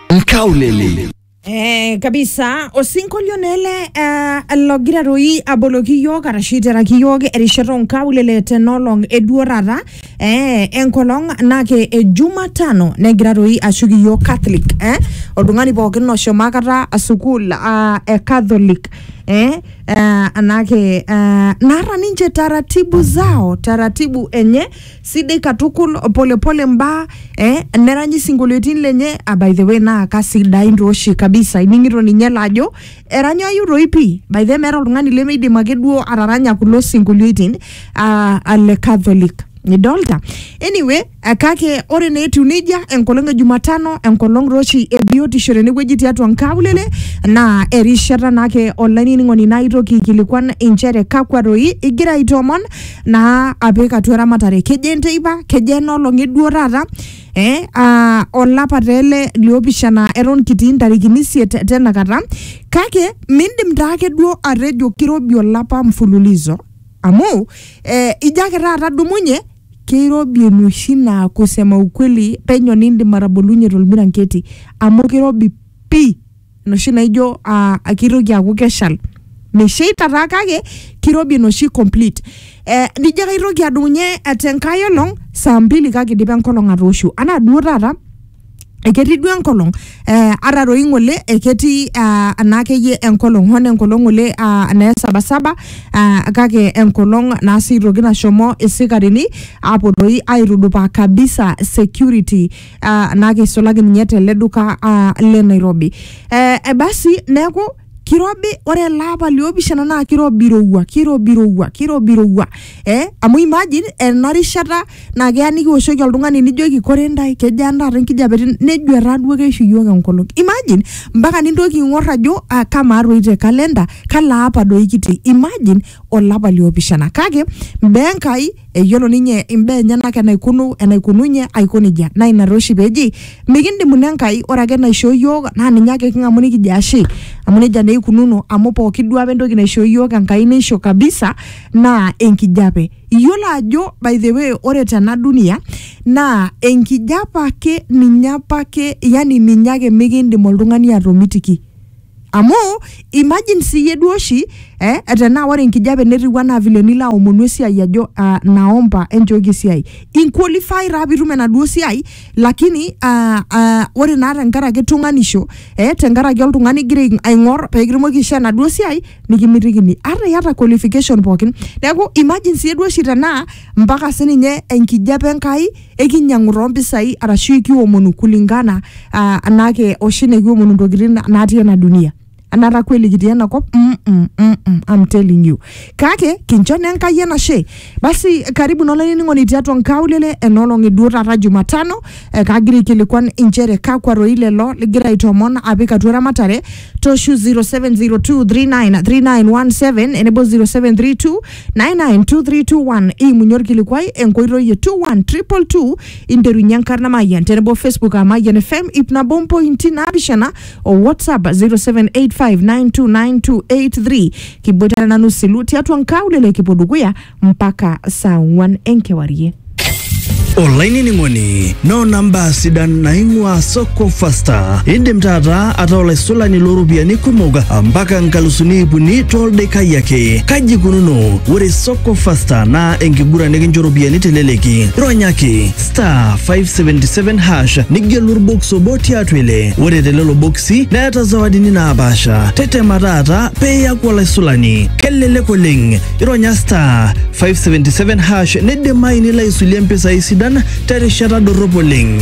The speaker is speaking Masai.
Nkaulele. Eh, kabisa osinkolionele eh, logira doi aboloki yiok arashu iteraki yiok erishata onkaulele tenolong eduo taata eh, enkolong nake e jumatano negira doi ashuk iyiok catholic eh, oltung'ani pookin oshomo akata sukuul ah, e catholic eh, eh, anake eh, naata ninche taratibu zao taratibu enye sidai katukul polepole mbaa eh, neranyi sinkolioitin lenye ah, by the way naa kasidain tooshi kabisa ining'ito ninye laajo eranyayu toi pii by the way meeta oltung'ani lemeidim ake duo ataranya kulo sinkolioitin ah, ah, le catholic nidolta anyway eh, kake ore naa etiu nejia enkolong e jumatano enkolong tooshi e biotisho tenewueji tiatua nkaulele naa erishata naake olainining'oni naitoki aikilikuan inchere kakwa toi igira aitoomon naa apik atua eramatare kejo enteipa kejo enoolong eduo taata eh, aa, olapa taa ele liopishana eton kitii ntarikini isiet tenakata kake mindim taa ake duo atejo kirobi olapa mfululizo amu eh, ijo ake taata dumunye keirobi enoshi naa kusema ukweli penyo nindim atabolunye tolmiranketi amu kirobi pii enoshi naijo ah, kitoki aaku keshal mesheita taa kake kirobi enoshi complete eh, nijo kaitoki adumunye eh, tenkae olong saa mbili kake idipa enkolong atooshu anaa duo taata eketii duo enkolong eh, ata doi ng'ole eketii ah, anaa akeyie enkolong hoo naa enkolong ng'ole ah, naa esabasaba ah, kake enkolong naa sii toki nashomo isikarini aapuo doi aitudupaa kabisa security ah, naa keisulaki ninye tele duka ah, le Nairobi. Eh, eh, basi neeku kirobi ore ele apa liopishana naa kirobi irowua kirobi irowua kirobi irowua eh, amu imagine ena rishata naa keya nikiwoshoki oltung'ani nijoki kore ntae kejaa ntaata enkijape tene?" nejo etaa duo keishu iyiook enkolong imagine mpaka nintoki ing'or ajo ah, kamaa toi te kalenda kalo apa doi kitii imagine olapa liopishana kake mbaa Enkai eyiolo ninye imbaa enyenak enaikunu enaikununye aiko nejia naa ina taa oshi peji mikindimuni Enkai ore ake naishoo iyiook naa ninye ake king'amu nikijo ashe amu nejia naa eikununo amu pooki duo apa entoki naishoo iyiook Enkai neisho kabisa naa enkijape iyiolo ajo by the way ore tena dunia naa enkijape ake ninye apake yani ninye ake mikindim oltung'ani atomitiki. Amu imagine siyie duo oshi eh, tenaa ore enkijape netiu anaa vile nilo aomonu esiai ajo uh, naomba enchooki esiai inqualify taa piitum enaduo siai lakini uh, uh, ore naa tenkaraki tung'anisho eh, tenkaraki oltung'ani igira aing- aing'or pekitumoki aishoo enaduo siai nikimitikini ata iyata qualification pookin neeku imagine siyie duo oshi tenaa mpaka sininye enkijape Enkai ekinyiang'u toompisai arashu ekiomonu kulingana uh, anake oshi nekiomonu ntokitin natii ena dunia anata kweli kitii ena kop mm -mm, mm -mm, I'm telling you kake kincho naa enkai enashe basi karibu naa olainining'oni tiatua nkaulele enoolong eduo taata jumatano eh, kagira aikilikuan inchere kakwa roi lelo ligira aitomon apik atua eramatare toshu 0702393917 enebo 0732 992321 imunye orkilikuai enkoitoi e 21222 interunye enkarna mayian tenebo facebook a mayian fm ip nabo mpointi naapishana o whatsapp 0785929283 kiboitare nanu silu tiatua nkaulele kipuo dukuya mpaka saa ong'uan enkewarie olainining'oni noona mbaa sidan naing'ua soko fasta indim taata ataa olaisulani looropiyiani kumok mpaka nkalusuni ip uni toldaikai ake kaji ikununo ore soko fasta naa enkiguran nikincho ropiyiani teleleki ronyaki star 577 hash nigelu orbox obo tiatua ile ore telelo boksi neeta zawadini naapaasha tetema taata peeyaku olaisulani kelelek oleng ironya star 577 hash neidimayu nilo aisulie mpisai sidan terishata dorrop oleng.